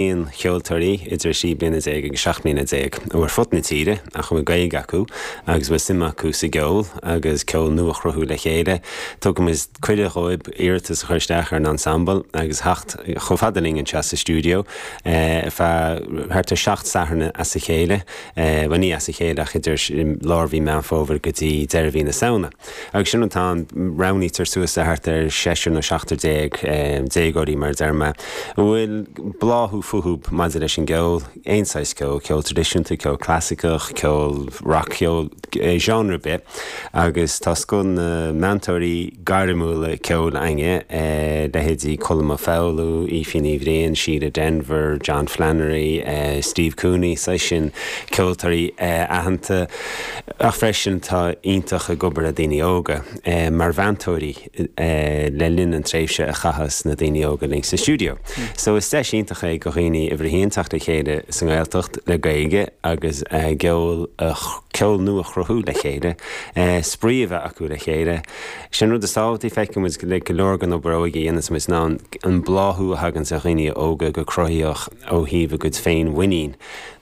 aon cheoltóirí idir sé bliana agus seacht mbliana déag ó ar fud na tíre ach a bhfuil Gaeilge acu agus a bhfuil suim acu sa gceol agus ceol nua a chruthú le chéile. Tugann muid cuireadh dhóibh iarratas a chur isteach ar an Ensemble agus a theacht chomh fada linn anseo sa stiúideo ar feadh thart ar seacht Satharn as a chéile, bhuel ní as a chéile ach idir lár mhí Meán Fómhair go dtí deireadh mhí na Samhna. Agus sin atá ann, roghnaítear suas le thart ar seisear nó seachtar déag, déagóirí mar a deir mé, a bhfuil bláthú fúthu maidir leis an gceol, aon saghas ceol, ceol traidisiúnta, ceol clasaiceach, ceol rac-cheol, genre ar bith, agus tá scoth na meantóirí gairmiúla ceoil againne, leithéidí Colm Ó Foghlú, Aoife Ní Bhriain, Síle Denvir, John Flannery, Steve Cooney, an saghas sin ceoltóirí aitheanta. ach freisin atá iontach ag obair le daoine óga, mar mheantóirí le linn an tréimhse a chaitheas na daoine óga linn sa stiúideo. So is deis iontach é go dhaoine uimhir a haon teacht le chéile sa nGaeltacht le Gaeilge agus ceol a ceol nua chruthú le chéile, spraoi a bheith acu le chéile. Sin an rud is tábhachtaí, feicfidh muid le go leor gon obair óige a dhéananns muid ná an bláthú a thaganns ar dhaoine óga go cruthaítheach ó thaobh a gcuid féinmhuinín,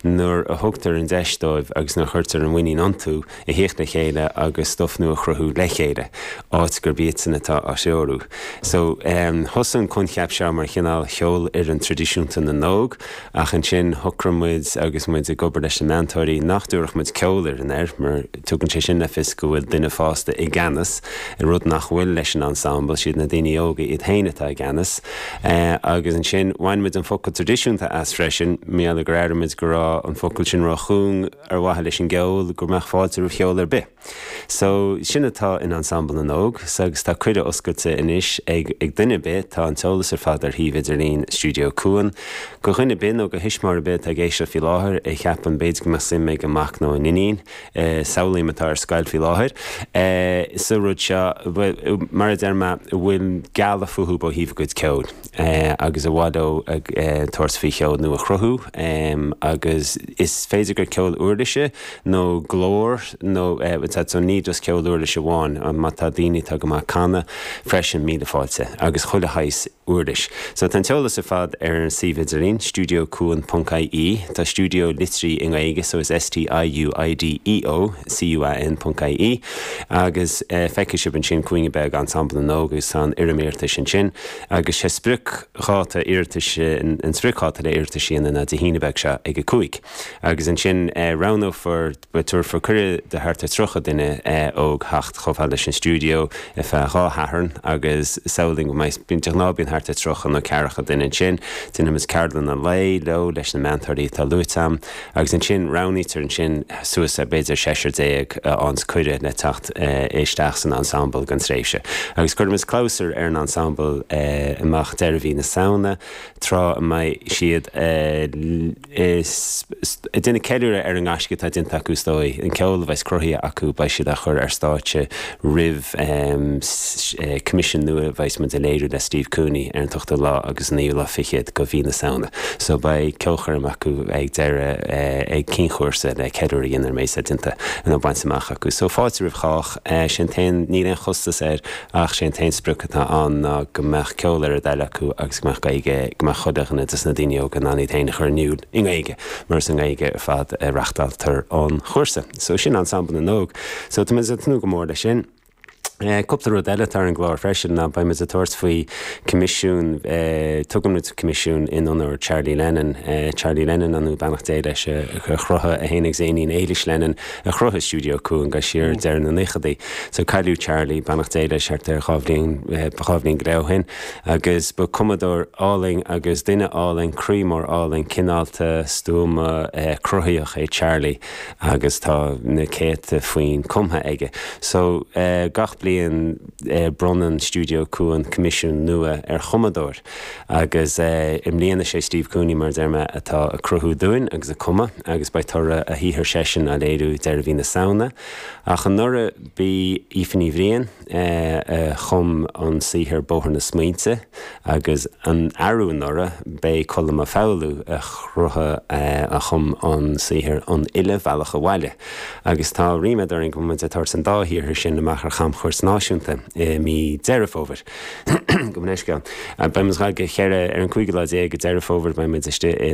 nuair a thugtar an deis dóibh agus nuair a chuirtear an mhuinín iontu, a theacht le chéile agus stuif nua a chruthú le chéile, áit gurb iadsan atá á threorú. So, thosaigh an coincheap seo mar chineál cheolfhoireann traidisiúnta na n-óg, ach ansin shocraigh muid agus muid ag obair leis na meantóirí nach dtabharfadh muid ceolfhoireann air, mar tugann sé sin le fios go bhfuil duine fásta i gceannas ar rud nach bhfuil leis an ensemble, siad na daoine óga iad féin atá i gceannas. Agus ansin, bhain muid an focal traidisiúnta as freisin, mar gheall gur airigh muid go raibh an focal sin ró-chúng ar mhaithe leis an gceol, go mbeadh fáilte roimh cheol ar bith. So, sin atá in Ensemble na nÓg, so agus tá cuireadh oscailte anois ag duine ar bith, tá an t-eolas ar fad ar shuíomh idirlín Stiúideo Cuan, go dhuine ar bith nó go thuismitheoir ar bith atá ag éisteacht faoi láthair a cheapann b'fhéidir go mbeadh suim ag a mac nó a n-iníon samhlaím atá ar scoil faoi láthair, sa rud seo, mar a deir mé, a bhfuil gealladh fúthu ó thaobh a gcuid ceoil agus ar mhaith leo a bheith ag tabhairt faoi cheol nua a chruthú agus is féidir gur ceol uirlise nó glór nó so ní just ceol uirlise amháin, má tá daoine atá go maith ag canadh freisin, míle fáilte agus chuile shaghas uirlis. So tá an t-eolas ar fad ar an suíomh idirlín, stiuideocuan.ie, tá stiúideo litrithe i nGaeilge so is S-T-I-U-I-D-E-O, C-U-A-N ponc I-E, agus feicfidh sibh ansin cúinne beag Ensemble na nÓg agus tá an fhoirm iarratais ansin agus sé spriocdháta iarratais, an spriocdháta le hiarratais a dhéanamh ná Dé hAoine beag seo ag a cúig agus ansin roghnófar Tabharfar cuireadh do thart ar 30 duine óg a theacht chomh fada leis an stiúideo ar feadh dhá Shatharn agus samhlaím go mbeidh, de ghnáth bíonn thart ar 30 nó ceathracha duine ansin. Déanfaimid ceardlanna lae leo leis na meantóirí atá luaite a'm agus ansin roghnaítear ansin suas le b'fhéidir seisear déag a fhaigheanns cuireadh le teacht isteach san ensemble don tréimhse agus cuirimid clabhsúr ar an ensemble amach deireadh mhí na Samhna tráth a mbeidh siad a is ag déanamh ceiliúradh ar an ngaisce atá déanta acu is dóigh, an ceol a bheas cruthaithe acu beidh siad á chur ar stáitse roimh choimisiún nua a bheas muid á léiriú le Steve Cooney ar an t-ochtú lá agus an naoú lá fichead de mhí na Samhna so beidh ceolchoirm acu ag deireadh ag ceann cúrsa le ceiliúradh a dhéanamh ar an méid atá déanta nó bainte amach acu so fáilte roimh chách, sé an t-aon, níl aon chostas air. Ach sé an t-aon sprioc atá ann ná go mbeadh ceol ar a dtoil acu agus go mbeadh Gaeilge, go mbeadh chuile dhuine de na daoine óga in ann iad féin a chur in iúl i nGaeilge, mar is i nGaeilge ar fad a reachtáiltear an cúrsa. So sin Ensemble na nÓg. So tá muid ag tnúth go mór leis sin. Cúpla rud eile atá ar an gclár freisin ná beidh muid ag tabhairt faoi choimisiún, tugann muid coimisiún in onóir Charlie Lennon, Charlie Lennon an nó beannacht Dé leis, a chruthaigh, é féin agus a iníon Éilis Lennon, a chruthaigh Stiúideo Cuan siar ag deireadh na naochadaí. So cailleadh Charlie, beannacht Dé leis, thart ar dhá bhliain, dhá bhliain go leith ó shin agus ba cumadóir álainn agus duine álainn, croí mór álainn, cineálta, stuama, cruthaitheach é Charlie agus tá na céadta foinn cumtha aige. So gach bliain bronnann Stiúideo Cuan coimisiún nua ar chumadóir. Agus i mbliana is é Steve Cooney, mar a deir mé, atá ag cruthú dúinn agus ag cumadh agus beidh toradh a shaothar seisean á léiriú deireadh mhí na Samhna. Ach anuraidh b'í Aoife Ní Bhriain a chum an saothar Bóthar na Smaointe agus an arú anuraidh b'é Colm Ó Foghlú a chruthaigh, a chum an saothar An Uile Bhealach Abhaile agus tá ríméad orainn go mbeimid ag tabhairt an dá shaothar sin amach ar chamchuairt náisiúnta i mí Deireadh Fómhair. Go minic. Beidh muid sa gCeathrú Rua ar an cúigiú lá déag de Dheireadh Fómhair, beidh muid istigh i.